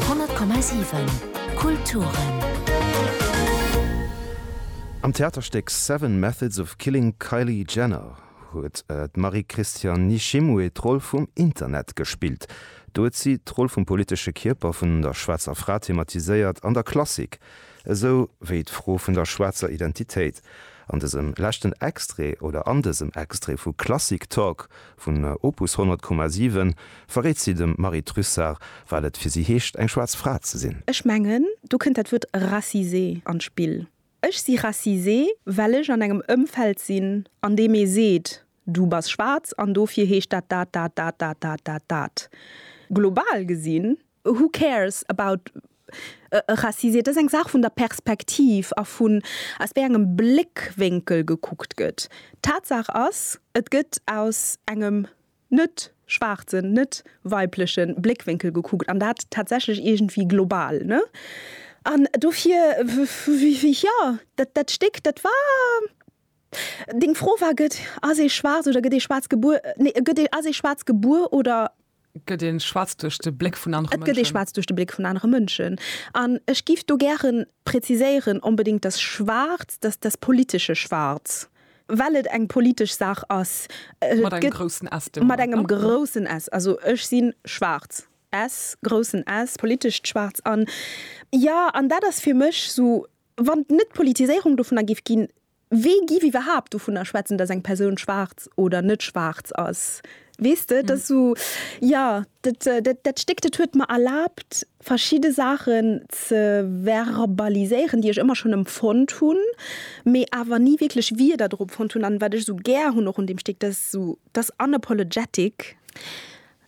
100,7 Kulturen. Am Theaterstéck Seven Methods of Killing Kylie Jenner huet d'Marie-Christiane Nishimwe d'Roll vum Internet gespillt. Do huet si d'Roll vum politesche Kierper vun der schwaarzer Fra thematiséiert an der Klassik, esou wéi d'Fro vun der schwaarzer Identitéit. An dësem leschten Extrait oder an dësem Extrait vu Klassik Talk Vun Opus 100,7 verréit si dem Marie Trussart, wat et fir si heescht, eng schwaarz Fra ze sinn. Ech mengen, do kënnt dat Wuert racisé an d'Spill. Ech si racisé, well ech an engem Ëmfeld sinn, an deem ee seet, du bass schwaarz an dofir heescht dat dat, dat, dat, dat, dat, dat, dat. Global gesinn Who cares about racism? Et ass eng Saach vun der Perspektiv a vun aus wéi engem Bléckwénkel gekuckt gëtt. Tatsaach ass, et gëtt aus engem net schwaarzen, net weibleche Bléckwénkel gekuckt, an dat tatsächlech iergendwéi global. Ne? An dofir, jo, dat Stéck, dat war. Deng Fro war, Gëtt ass ee schwaarz oder gëtt ee schwaarz gebuer? Nee, gëtt ee ass ee schwaarz gebuer oder? Gëtt ee schwaarz duerch de Bléck vun anere Mënschen? Et gëtt ee schwaarz duerch de Bléck vun anere Mënschen. An ech géif do gären präziséieren, onbedéngt dass schwaarz, dass das politische Schwarz, well et eng politesch Saach ass. Mat engem groussen S deemno. Mat engem groussen S. Also ech si schwaarz, S, groussen S, politescht schwaarz. An jo, an dat ass fir mech esou Wann et net d'Politiséierung dovunner géif ginn, wee giff iwwerhaapt dovunner schwätzen, dass eng Persoun schwaarz oder net schwaarz ass? Weess de, et ass esou, jo, dat, dat, dat Stéck, dat huet mer erlaabt, verschidde Saachen ze verbaliséieren, déi ech ëmmer schonn empfonnt hunn, mee awer ni wierklech Wierder dorop fonnt hunn. An wat ech esou gär hunn och un deem Stéck, dat ass esou, dat ass unapologetic.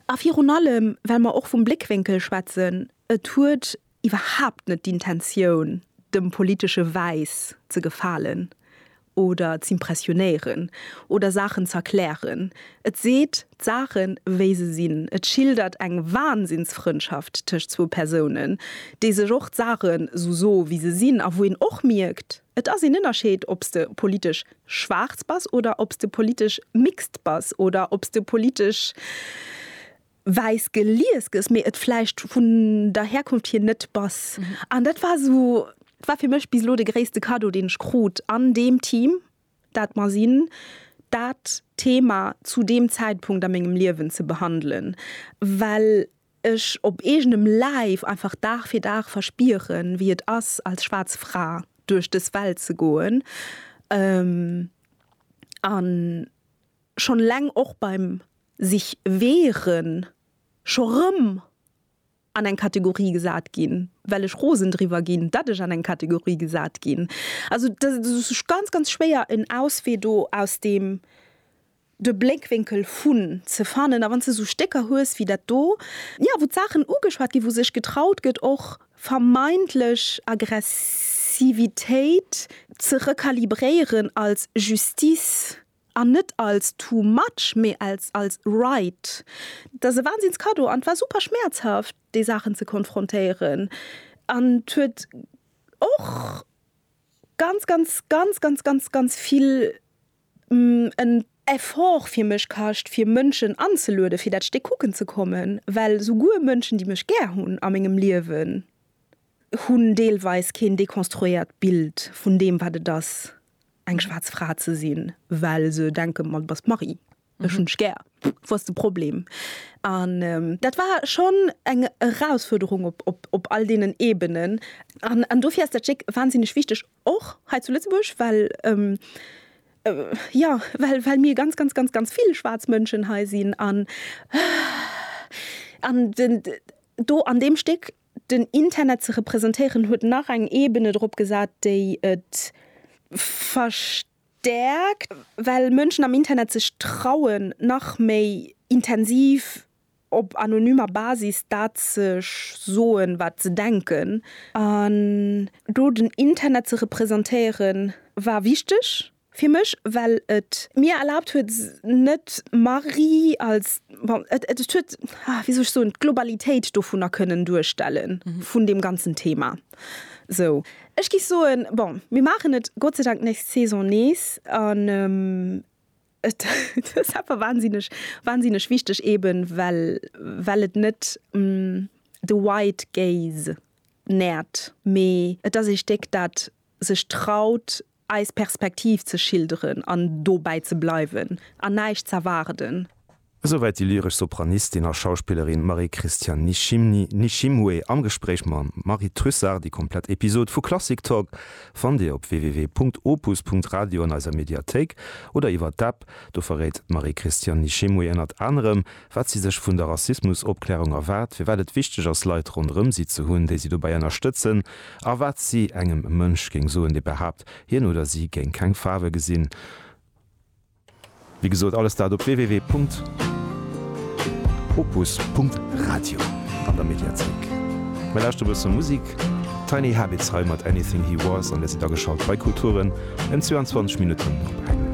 A virun allem, well mer och vum Bléckwénkel schwätzen, et huet iwwerhaapt net d'Intentioun, dem politesche Wäiss ze gefalen oder z'impressionéieren oder Saachen z'erklären. Et seet d'Saache wéi se sinn. Et schildert eng Wahnsinnsfrëndschaft tëscht zwou Persounen, déi sech och d'Saache sou so wéi se sinn a wou een och mierkt, et ass een Ënnerscheed ob s de politesch schwaarz bass oder ob s de politesch mixt bass oder ob s de politesch. wäiss gelies gëss, mee et vläicht vun der Herkunft hier net bass. An dat war esou, dat war fir mech bis elo de gréisste Cadeau, deen ech krut an deem Team, dat mer sinn, dat Thema zu deem Zäitpunkt a mengem Liewen ze behandelen, well ech op eegenem Läif einfach Dag fir Dag verspieren, wéi et ass, als schwaarz Fra duerch dës Welt ze goen. An Schon eleng och beim sich wehren scho rëm an eng Kategorie gesat ginn, well ech rosen driwwer ginn, datt ech an eng Kategorie gesat ginn. Also et ass ganz, ganz schwéier en Auswee do aus deem de Bléckwénkel vun ze fannen. A wann s de esou Stécker hues wéi dat do, jo, wou d'Saachen ugeschwat ginn, wou sech getraut gëtt och vermeintlech Aggressivitéit ze rekalibréieren als Justice, An net als too much, mee als als right. Et ass e Wahnsinns Cadeau an et war super schmerzhaft déi Saachen ze konfrontéieren an et huet och ganz ganz ganz ganz ganz ganz vill en Effort fir mech kascht fir Mënschen anzelueden fir dat Stéck kucken ze kommen, well souguer Mënschen déi mech gär hunn a mengem Liewen hunn deelweis keen dekonstruéiert Bild vun deem wat et ass eng schwaarz Fra ze sinn, well se denken, ma du bass d'Marie, ech hunn dech gär, wou ass de Problem? An dat war schonn eng Erausfuerderung op all deenen Ebenen. An dofir ass dat Stéck wansinneg wichteg, och hei zu Lëtzebuerg, well, jo, well mir ganz, ganz, ganz, ganz vill schwaarz Mënschen hei sinn. An do an deem Stéck Den Internet ze representéieren huet nach eng Ebene drop gesat, déi et verstäerkt, well Mënschen am Internet sech trauen, nach méi intensiv op anonymer Basis dat ze soen, wat se denken. An do den Internet ze representéieren, war wichteg. Fir mech, well et. Mir erlaabt huet, net Marie als, bon, et, et, et huet, ah, wéi soll ech soen, d'Globalitéit dovunner kënnen duerstellen, vun deem ganzen Thema. Sou, ech géif soen, bon, mir maachen et Gott sei Dank nächst Saison nees. An et ass awer wahnsinneg, wahnsinneg wichteg, eben well, well et net de White Gaze nährt, mee et ass ee Stéck, dat sech traut, eis Perspektiv ze schilderen an dobäi ze bleiwen an näischt z'erwaarden. Esouwäit déi lyresch Sopranistin a Schauspillerin Marie-Christiane Nishimni, Nishimwe, am Gespréich mam Marie Trussart. Déi komplett Episod vu Klassik Talk fannt Dir op www.opus.radio an eiser Mediathéik oder iwwer d'App. Do verréit d'Marie-Christiane Nishimwe ënnert anerem, wat si sech vun der Rassismusopklärung erwaart, firwat et wichteg ass, Leit ronderëm si ze hunn, déi si dobäi ënnerstëtzen, a wat si engem e Mënsch géing soen, dee behaapt, hien oder si géing keng Faarwe gesinn. Wéi gesot, alles dat op www.opus.radio an der Mediathéik. Mir lauschteren e bësse Musik. Tiny Habits hei mat Anything He Was an Dir sidd ageschalt bei Kulturen en 22 Minutten op eng.